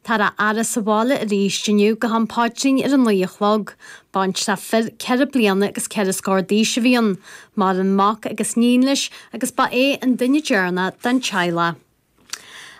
Táthar á fhaire sa bhaile aríst inniu go ham paidrín ar a naoi a chlog. Baintreach fir ceithre bliana agus ceithre scór d'aois a bhí ann. Maireann mac agus 'níon leis agus ba é an duine deireanach den teaghlach.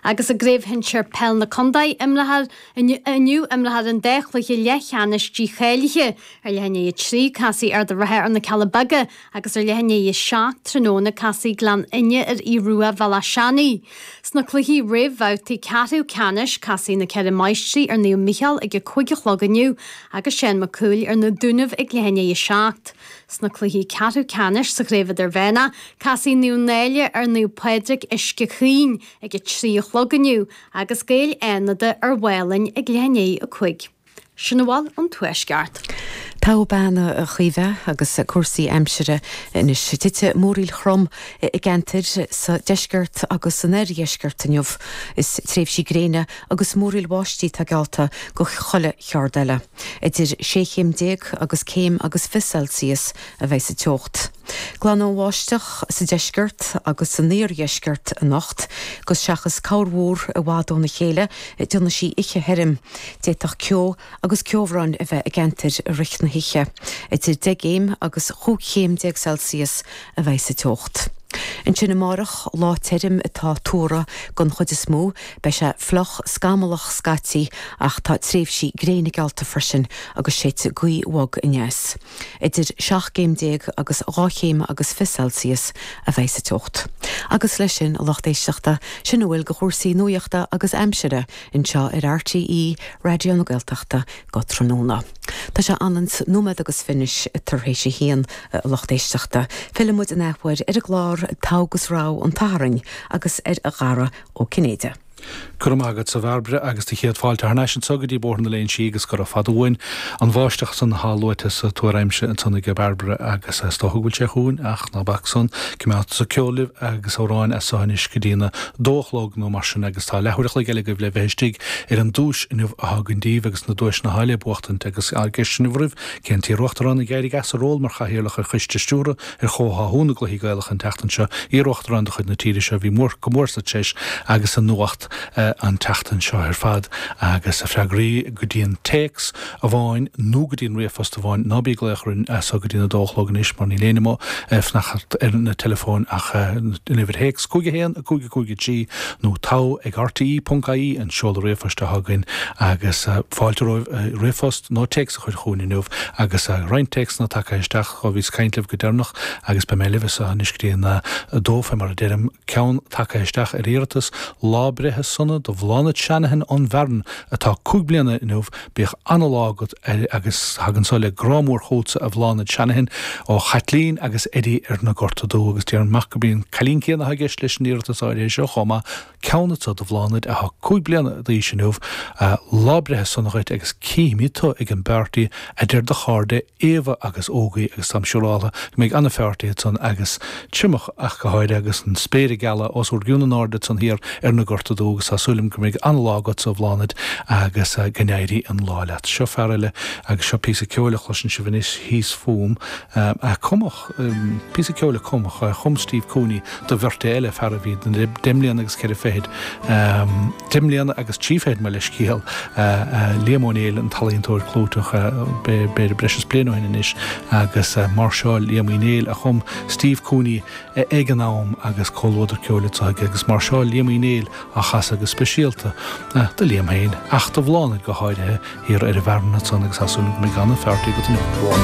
Agus i gCraobh Shinsear Peil na Condae imreofar inniu imreofar an dá chluiche leathcheannais dícháilithe ar leath i ndiaidh a trí. Casfaidh Ard an Rátha ar na Cealla Beaga agus ar leath i ndiaidh a seacht tráthnóna casfaidh Gleann Fhinne ar Aodh Ruadh Bhéal Átha Seanaidh. Sna cluichí réamhbhabhtaí ceathrú ceannais, casfaidh Na Ceithre Máistrí ar Naomh Mícheál ag a cúig a chlog inniu agus Seán Mac Cumhaill ar Na Dúnaibh ag leath i ndiaidh a seacht. Sna cluichí ceathrú ceannais sa Chraobh Idirmhéanach, casfaidh Naomh Náille ar Naomh Pádraig Uisce Caoin ag a trí a chlog inniu agus Gaeil Fhánada ar Mhálainn ag leath i ndiaidh a cúig. Sin a bhfuil ón Tuaisceart. Togha bean, a Chaoimhe, agus cúrsaí aimsire anois. Titfidh múraíl throm i gceantair sa deisceart agus san oirdheisceart inniu. Is tréimhsí gréine agus múraíl bháistí atá geallta do chuile cheard eile. Idir sé chéim déag agus céim agus fiche Celsius a bheidh sa teocht. Glanfaidh an bháisteach sa deisceart agus san oirdheisceart anocht, agus seachas corrmhúr i bhfad óna chéile déanfaidh sí oíche thirim, d'fhéadfadh ceo agus ceobhrán a bheith i gceantair i rith na hoíche. Idir deich gcéim agus chúig chéim déag Celsius a bheidh sa teocht. Ansin amárach, lá tirim atá tuartha den chuid is mó. Beidh sé fliuch scamallach scaití, ach tá tréimhsí gréine geallta freisin agus séidfidh gaoth bhog aneas. Idir seacht gcéim déag agus dhá chéim agus fiche Celsius a bheidh sa teocht. Agus leis sin, a lucht éisteachta, sin a bhfuil de chúrsaí nuaíochta agus aimsire anseo ar RTÉ Raidió na Gaeltachta go tráthnóna. Tá sé aon nóiméad agus fiche anois tar éis a haon, a lucht éisteachta. Fillfidh muid in athuair ar an gclár Togha agus Rogha an tSathairn agus ar Dhara Ó Cinnéide. Go raibh maith agatsa a Bhairbre agus do chéad fáilte thar n-ais anso go dtí Bóthar na Léinsí agus gura fada uainn an bháisteach san athá luaite sa tuar aimsire ansan age Bairbre agus is dócha go bhfuil sé chugainn ach ná bac san, cimeádfadsa ceol libh agus amhráin as so anois go dtína dó a chlog nó mar sin agus tá leathuair a chloig eile agaibh le bheith istigh ar an duais inniu athá againn daoibh agus na duaiseanna athá le buachtaint agus ceist inniu romhaibh cén t-iar-Uachtarán a d'éirigh as a ról mar Chathaoirleach ar Choiste Stiúrtha Ar chomhtháthú na gcluichí Gaelacha an tseachtain seo, iar-Uachtarán de chuid na tíre seo, bhí go mór sa treis agus sa nuacht an tseachtain seo ar fad agus na freagraí go dtí an téacs amháin nó go dtí an ríomhphost amháin. Ná bí ag glaoch orainn as so go dtí'n a dó a chlog anois mar níl éinne mo fnacht ar na teileafóin ach an uimhir théacs 51553 nó togha ag rte.ie an seoladh ríomhphoist atá againn agus fáilte romhaibh ríomhphost nó téacs a chur chugainn inniu agus roinnt téacsanna tagtha isteach ó bhíos ag caint libh go deireanach agus beidh mé libhse anois go dtí an 2 fé mar a deirim, ceann tagtha isteach ar iarratas lá breithe sona do Bhláthnaid Shanahan ón bhFearann atá cúig bliana inniu, bíodh an-lá agat agus tagann so le grá mór chugatsa a Bhláthnaid Shanahan ó Chaitlín agus Eddie ar na Gorta Dubh agus déarfainn maith gurb í an cailín céanna atá i gceist leis an iarratas áirithe seo chomh maith. ceann anso do Bhláthnaid athá cúig bliana d'aois inniu. Lá breithe sona dhuit agus cífimíd tú ag an bpeártaí adeir do cháirde Éabha agus Ógaí agus táim siúráltha go mbeidh an-pheártaí ansan agus triomach ach go háirithe agus an spéir ag gealadh os úr gcionn in airde ansan thiar ar na Gorta Dubha agus tá súil agam go mbeidh an-lá agatsa a Bhláthnaid agus go n-éirí an lá leat. Seo fear eile agus seo píosa ceoil a chloiseann sibh anois thíos fúm a cumadh. píosa ceoil a chumfadh, a chum Steve Cooney do bheirt eile, fear a bhí deich mbliana agus ceithre fichid, deich mbliana agus trí fichid mo leithscéal, Liam Ó Néill, an t-ealaíontóir clúiteach, b'fhéidir breis is bliain ó shin anois agus máirseáil Liam Uí Néill a chum Steve Cooney ag an am agus comhluadar ceoil anso aige agus máirseáil Liam Uí Néill á chasadh go speisialta do Liam féin ach do Bhláthnaid go háirithe thiar ar an bhFearann ansan agus as sin mé gan an fear tí go dtí an